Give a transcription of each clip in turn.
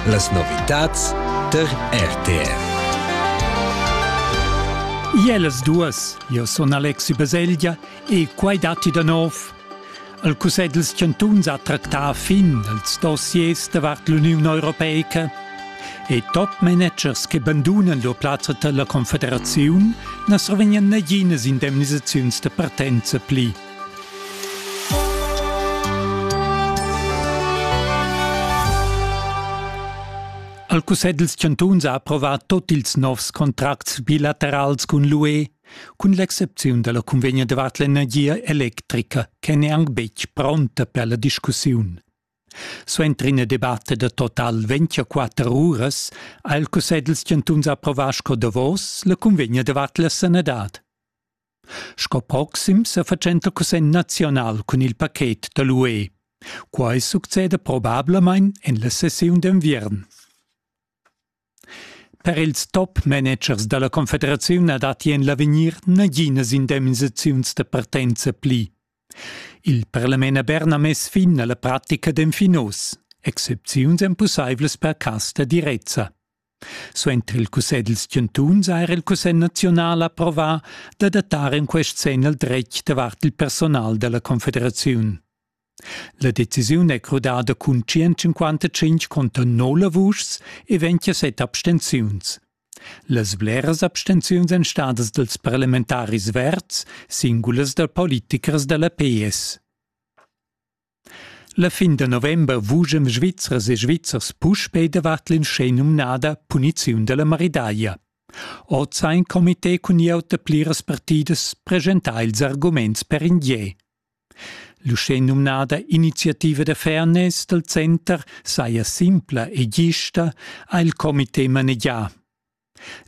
Las novitads tar RTR. Jelas duas, io sun Alexi Baselgia e quai datti da nov. Il Cussegl dels Chantuns ha tractà fin als dossiers davart l'Uniun Europeica e top-managers che bandunan lur plazza tar la Confederaziun na survegnan naginas indemnisaziuns da partenza pli. Al Cussegl dals chantuns ha approvà tot ils novs contracts bilaterals cun l'UE, cun l'excepziun dalla convegna davart l'energia electrica, che n'è anc betg pronta per la discussiun. Suenter ina debatta da total 24 uras ha il Cussegl dals chantuns approvà sco davos la convegna davart la sanadad. Sco proxim sa fatschenta cussegl nazional cun il paket da l'UE. Quai succeda probablamain en la sessiun d'enviern. Per ils top managers da la Confederaziun na datti en l'avegnir naginas indemnisaziuns da partenza pli. Il parlament a Bern ha mess fin a la pratica d'enfinos. Excepziuns èn pussaivlas per cas da direzza. Suenter il cussegl dals chantuns ha era il cussegl naziunal approvà d'adattar en quest senn il dretg davart il personal da la confederaziun. La decisiun è crudada cun 155 conter 0 vuschs e 27 abstenziuns. Las bleras abstenziuns èn stadas dals parlamentaris verds, singulas dal politichers da la PS. La fin da november vuschem Svizzers e Svizzers puspei davart l'inschenumnada puniziun dalla maridaglia. Oz ha in comité cun gliauta pliras partidas presentà ils arguments per in gie. L'uschenumnada iniziativa da fairness dal center saja simpla e gista, ha il comité manegià.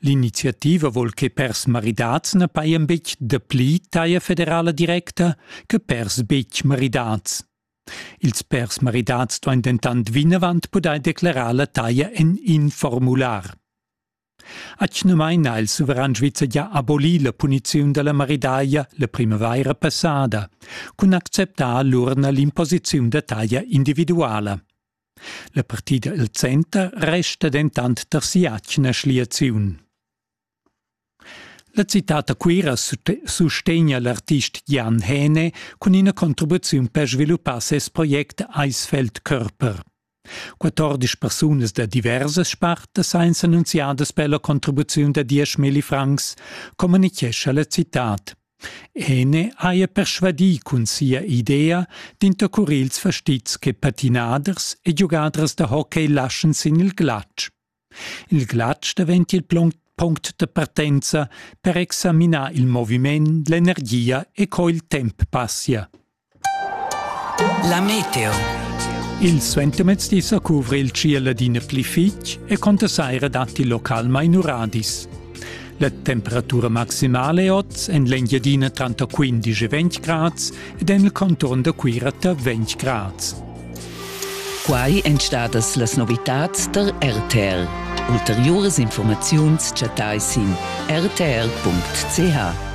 L'iniziativa vol che pèrs maridats na pajan betg dapli taglia federala directa che pèrs betg maridats. Ils pèrs maridats duain dentant vinavant pudair declarar la taglia en in formular. Atgnamain ha il suveran svizzer gia abolì la puniziun da la maridaglia la primavaira passada, cun acceptar allura l'imposiziun da taglia individuala. La partida el center resta dentant tar si'atgna schliaziun. La citad da Cuira sustegna l'artist Jan Häne cun ina contribuziun per sviluppar ses project Eisfeld Körper. 14 persunas da diversas spartas ein s'annunziadas per la contribuziun da 10 milli francs, communichescha la citad. Ene haja persvadì cun sia idea d'intercurir ils fastizs che patinaders e giugadras da hockey laschan sin il glatsch. Il glatsch daventia il plon- punct da partenza per examinar il moviment, l'energia e co il temp passia. La meteo. Il suentermezdi sa cuvra il tschiel adina pli fitg e conta saira datti localmain uradis. La temperatura maximale è oz en l'Engiadina tranter 15 e 20 grads ed en il conturn da Cuira tar 20 grads. Quai èn stadas las novitads der RTL. Ulteriuras informaziuns chattai sin rtl.ch.